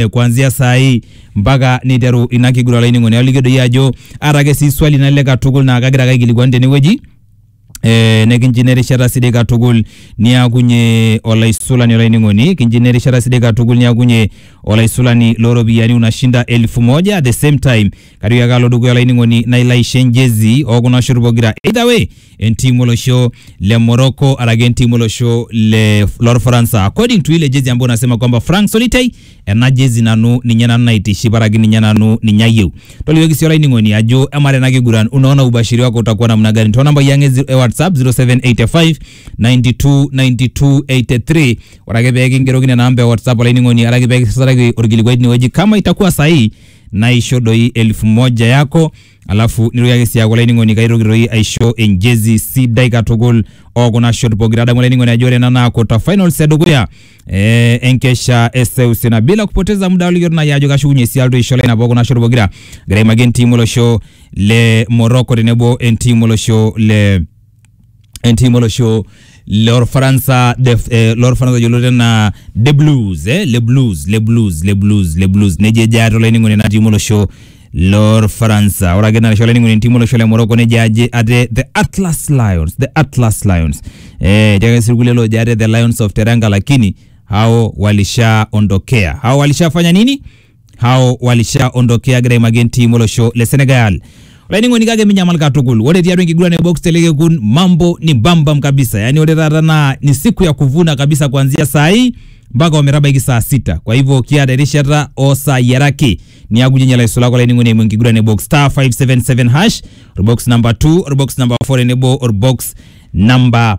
eh, kuanzia saa hii mpaka neiteru ina kiguran olainining'oni aliki doi ajo aata ake sii swali nalelek katukul naa kagira ake aikilikuan tenewueji Eh, nekinji nerishata sidai katukul niakunye olaisulani olainining'oni kinji nerishata sidai katukul niakunye olaisulani looropiyiani unashinda elfu moja at the same time kario ake alo dukuya olainining'oni nailo aisho enjezi ookuna shot pokira either way entimu olosho le Morocco araki entimu olosho le lorfaransa according to ile jezi ambayo nasema kwamba Frank Solitei ena jezi nanu ninye nanu naitiship araki ninye nanu ninye ayieu tolikioki sii olainining'oni ajo amaa tena kiguran unaona ubashiri wako utakuwa namna gani too nambai ang e zi- e whatsapp 0785 92 92 83 ore ake pee kingeroki nena amba e whatsapp olainining'oni araki pee kisasaraki orkilikuai tinewueji kama itakuwa sahihi naisho doi elfu moja yako alafu nitoki ake sii aaku olainining'oni kaitoki toi aisho enjezi sidai katukul okuna shot pokira adamu olainining'oni ajo ore ena naa quarter finals edukuya eh, enkesha e seuseu na bila kupoteza muda olikitu nai ajo kashukunye sii alotu aisho lainap okuna shot pokira agira aimaki entiim olosho le Morocco tenebo entiim olosho le entiim olosho lorfaransa def- eh, lorfaransa yioloti enaa the blues eh? le blues le blues le blues le blues nejo ejo ate olainining'oni ena tiim olosho lorfaransa ore ake narisho olainining'oni entiim olosho le morocco nejo aje ate the atlas lions the atlas lions eh, etii ake sii irkulie loojo ate the lions of teranga lakini hao walishaondokea hao walishafanya nini hao walishaondokea egira aimaki entiim olosho le Senegal. Olainining'oni kake minyamal katukul, ore tiatua enkiguran e box telekekun mambo ni bambam kabisa, yaani ore taata naa ni siku ya kuvuna kabisa kuanzia saa hii mpaka ometabaiki saa sita. Kwa hivyo kiata erishata oo saai are ake niaku ijo ilaisulak olainining'oni eimu enkiguran e box star 577 hash orbox number 2 orbox number 4 tenebo orbox number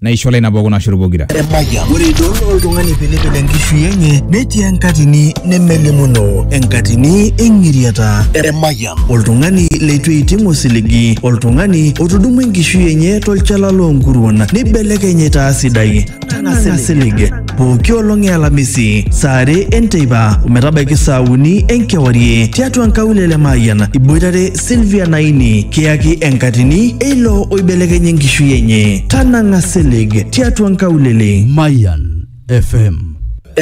naisho lai nabo kuna shot pokira. Emayian. Ore idol oltung'ani pilipil enkishui enye netii enkatini nemelimuno enkatini eng'iriata. Emayian. Oltung'ani leitu eiting osiligi, oltung'ani otudumua enkishui enye tolchala loonkuruon neibelekeny aitaa sidai. Tang'asa silig. Pooki olong e Alamisi, saa are enteipa ometabaiki saa uni enkewarie tiatua nkaulele Mayian iboitare Sylvia Naini kiyaki enkatini eilo oibelekenya enkishui enye. Tanang'a silig tiatua nkaulele. Mayan FM